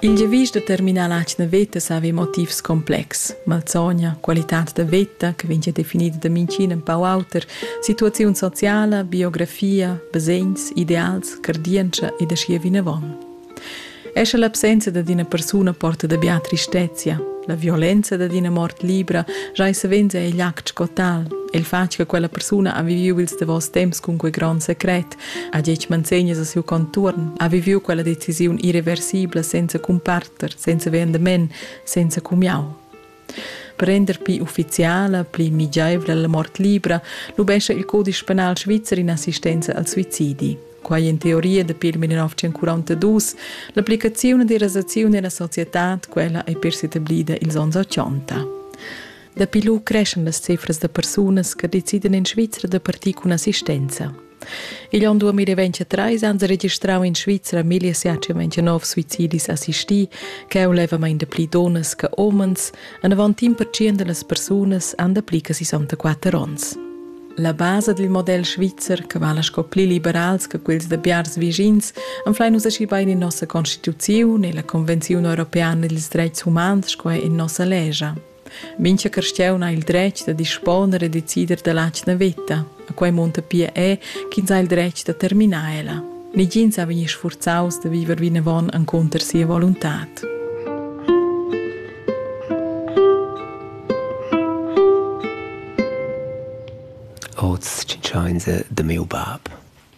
Il giavisch da terminar l'atgna veta savi motivs complexs. Malsogna, qualitad da veta che vegn definida da minchin empau auter, situaziun sociala, biografia, basegns, ideals, cardientscha ed aschia vinavon. Escha l'absenza dad ina persuna porta da bia tristezia, la violenza dad ina mort libra giai savens è igl act sco tal, e il fatg che quella persuna ha viviu ils davos temps cun quei gron secret, ha detg manzegnas a siu contuorn, ha viviu quella decisiun irreversibla senza cumparter, senza vendement, senza cumiau. Per render pli ufficiala, pli migiaivla la mort libra, lubescha il codice penal svizzer in assistenza al suicidi. Quai in teoria dapi il 1942, l'applicazione della rasazione nella società, quella è per s'etablida ils onns 80. Dapi lu creschan las cifras da persunas che decidan en Svizra da partir cun assistenza. Igl onn 2023 han sie registrau in Svizra 1729 suicidis assistì, che è levamain da pli donas che omens, en avant in percent delle persone han dapli che 64 anni. La base del model svizzer, che vala sco pli liberals che quels da biars vischins, anflein nus aschi bein in nossa constituzione e la Convenzione Europeana dils Dreits Humans sco in nossa legia. Mincha carstiaun ha il dretg da disponer e decider dalla atgna veta, a quai munta pia er ch'ins ha il dretg da terminar ella. Negins ha vegni sfurzaus da viver vinavon encunter sia voluntad. Oz tschintschains da miu bab,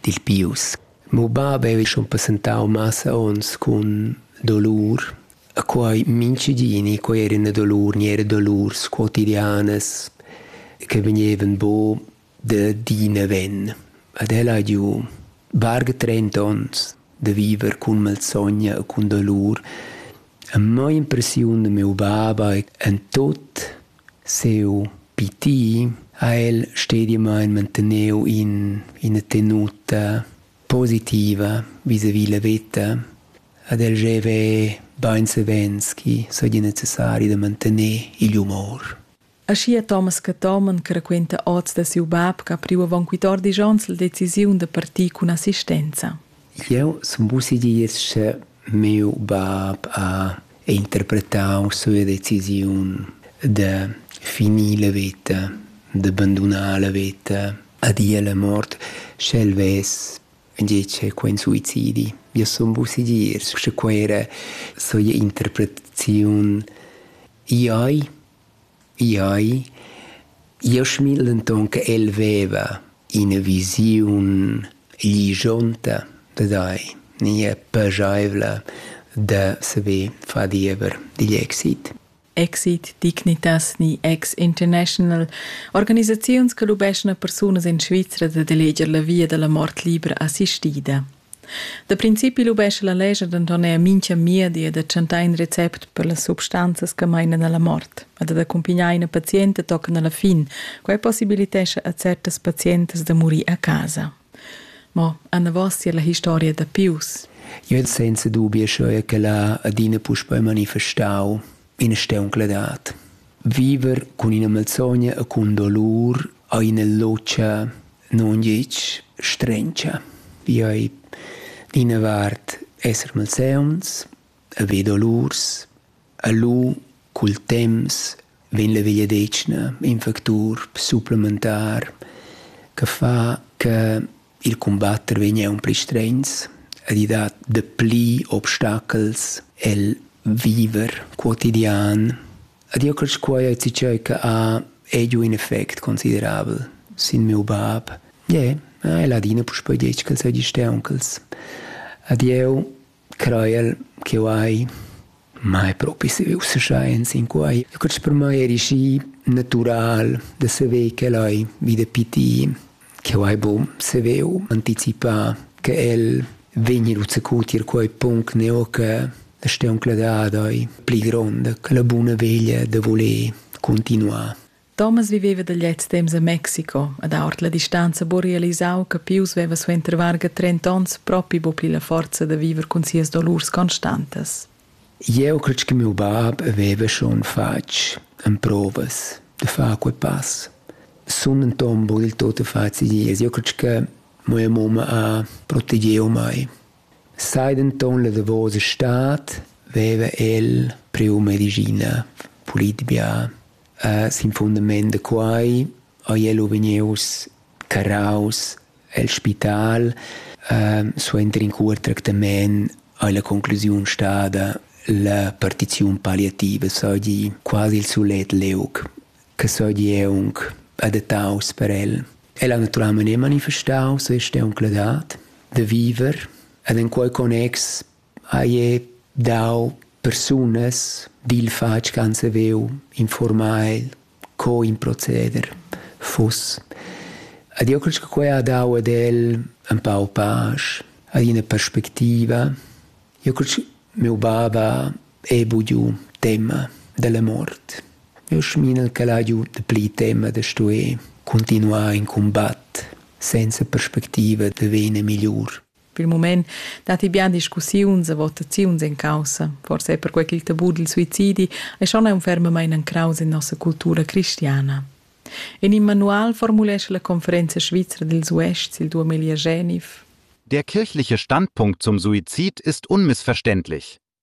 dil Pius. Miu bab era schon passentau massa onns cun dolur E quai minchedini, quai eran dolur, gnere dolurs quotidianas che vegnevan buca da di naven. Ed el ha giu varga trenta onns da viver cun malsogna e cun dolur. E mo impressiun da miu baba e en tot siu pitir ha el stediamain manteneu in ina tenuta positiva visavi la veta ed el gieva bain savens chi saja necessari da mantener igl humor. Aschia Thomas Cathomen che raquenta oz da siu bab che ha priu avon quittor dis onns la decisiun da partir cun assistenza. Jeu sun vussi dir che Miu bab ha interpretau sua decisiun da finir la veta, da bandunar la veta a dir alla mort, sche el vess gitg quei suicidi. Io sun buca segir, sche quei era sua interpretaziun. Iai Iai, Jasmin denton che el veva ina visiun ligionta dad ei, nia pageivla da saver far diever digl exit. Exit Dignitas ni ex international organisaziuns che lubeschan a persunas en Svizra dad eleger la via dalla mort libra assistida. Da principi lubescha la lescha denton era mintga miedi da tschentar in recept per las substanzas che meinan alla mort e da accumpignar ina pazienta tochen alla fin. Quei possibilitescha a certas pazientas da murir a casa. Ma anavos tier la historia da Pius. Io het senza dubi scheu che la adina puspei manifestau ina steuncladat. Viver cun ina malsogna e cun dolur a ina locia non gitg strendscha. Io ei d'ina vart esser malseuns, e ve dolurs, e lu cul temps vegn la vegliadetgna in factur supplementar che fa che il cumbatter vegn aunc pli strends ed i dat dapli obstachels el viver quotidian Ed io cresch quai e ti tgei che ha è giu in effect considerabel sin miu bab. Yeah, el ha adina puspei detg ch'el seigi steunchels. Ed jeu creiel ch'jeu hai mai propi saviu seschein sin quai. Eu cresch per mei eri schi natural da saver ch'el hai vida pitir Cheu ei buc saveu anticipar che el vegni lu zacu tier quei punct neu che la steuncla dad ei pli gronda che la buna veglia da voler continuar. Thomas viveva da gliez temps a Mexico ed ord la distanza buca realisau che Pius veva suenter varga trenta onns propi buca pli la forza da viver cun sias dolurs constantas. Jeu cret che miu bab veva schon fatg emprovas da far quei pass. Sun denton buca dil tut facil ies. Jeu cret che mia mumma ha protegiu mei. Sai denton la davosa stad veva el priu medischina pulitbia. Sin fundament da quei haiel u vegnius carraus el spital ehm suenter in cuort tractament ei la conclusiun stada la partiziun palliativa seigi quasi il sulet liug che seigi aunc adattaus per el. El ha naturalmein manifestau sia stauncladad da viver ed en quei connex Haie dau persunas dil fatg ch'han saveu informar el co in proceder fuss. Ed io cresch che quai ha dau ad el ün pau pasch, ad ina perspectiva. Io cresch miu bab ha bugiu tema della mort. Io schminel ch'el ha giu dapli tema da stuer cuntinuar in cumbat senza perspectiva da vegnir migliur. Pil mument datti bien discussiuns e votaziuns en caussa, forse per quei ch'il tabù dil suicidi ei schon aunc fermamain encraus en nossa cultura cristiana. En in manual formulescha la Conferenza svizra dils Uests il duamilliagenev Der kirchliche Standpunkt zum Suizid ist unmissverständlich.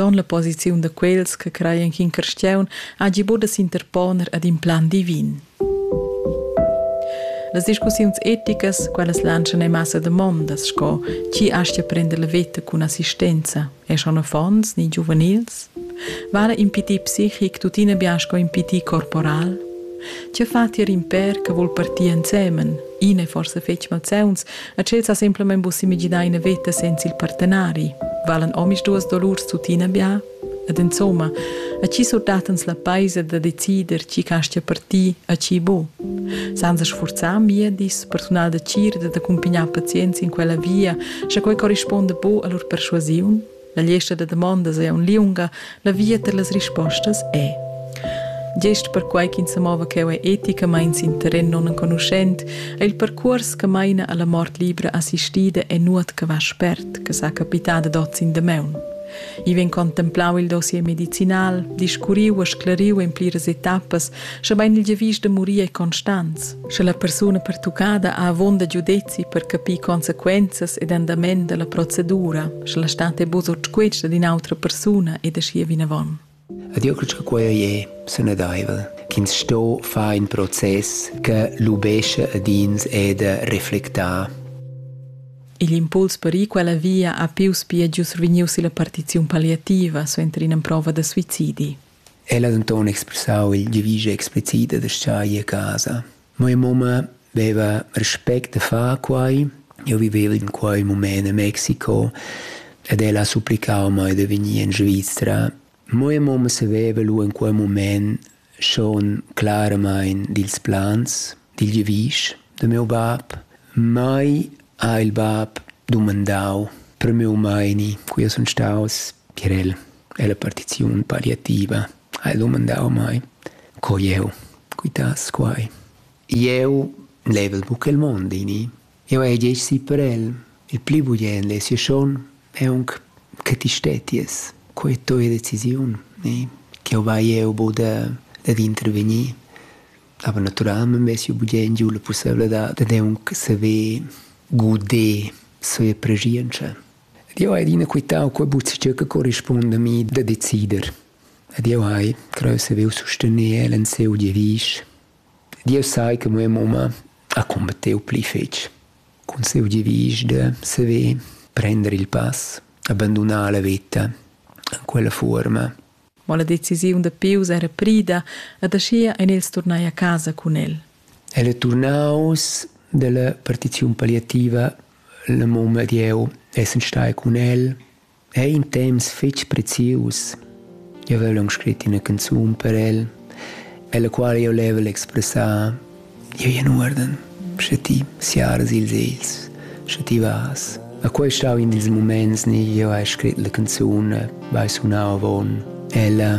Ton la posiziun da quels che creien ch'in carstiaun hagi buca s'interponer ad in plan divin. Las discussiuns eticas, quellas lantschan ei massa damondas sco chi astga prender la veta cun assistenza, e schon affons ni giuvenils? Vara impedir psichic tuttina bien sco impedir corporal? Tge fa tier in per che vul partir ensemen? Ina e forsa fetg malzeuns, A tschel sa semplamein buc semiginar ina veta senza il partenari. Valan omisduas dolurs tuttina bia? Ed insomma, a chi surdattens la peisa da decider tgi castia per ti, a chi bu? Senza sfurzar miedis, persunal da cir ed d'accumpignar pazients in quella via, sche quei corrisponda bu all'ur perschuasiun? La gliesta da damondas ei aunc liunga, la via per las rispostas è. Gest perquai ch'ins sa mova cheu ei eticamain sin terren nunenconuschent, è il percuors che maina alla mort libra assistida e nuot che va spert, che sa capità dad oz in damaun. I vegn contemplau il dossier medicinal, discurriu e sclariu en pliras etappas Schebein il giavisch da murir ei constants, sche la persuna pertuccada ha avon da giudezi per capir consequenzas ed andament dalla procedura, sche la stat ei buca sutquetsch ad in'autra persuna ed aschia vinavon. Ed io credo che quei è sanadaivel, ch'ins sto far in process che lubesce ad ins e da reflectar. Igl impuls per ir quella via ha pius pia giu survegniu silla partiziun palliativa suenter ina prova da suicidi. El ha denton expressau il giavisch explicit da schai a casa. Mia mumma veva respect da far quei. Jeu viveva in quei mument a Mexico ed ella ha supplicau mei da vegnir in Svizra. Mia mamma saveva lu in quei mument schon claramain dils plans, dil giavisch da miu bab. Mai ha il bab dumandau per miu meini, cui jeu sun staus, per el. Ella partiziun palliativa ha el dumandau mei, co jeu quitass quai. Jeu level buca il mond ini. Jeu hai gest gì per el. Il pli bugient è sia schon aunc che ti stetties. Quei è tua decisiun, ne? Ch'jeu vai jeu buc da dad intervegnir. Aber naturalmein vess jeu bugent giu la pusseivladad dad aunc saver guder sia preschientscha. Ed jeu hai adina quitau quei buzzetg che corrispunda a mi da decider. Ed jeu hai creu saviu sustener el en siu giavisch. Ed jeu sai che mia mumma ha combattiu pli fetg cun siu giavisch da saver prender il pass, abandonar la veta en quella fuorma. Ma la decisiun da Pius era prida ed aschia ein els turnai a casa cun el. El è turnaus dalla partiziun palliativa Il mum ed jeu essan stai cun el ein temps fetg prezius. Jeu vevel aunc scrit ina canzun per el, ella quala jeu level expressar jeu in uorden, sche ti siaras ils egls, sche ti vas. E quei ei stau in dils muments ni jeu hai scrit la canzun, vai sunau avon ella.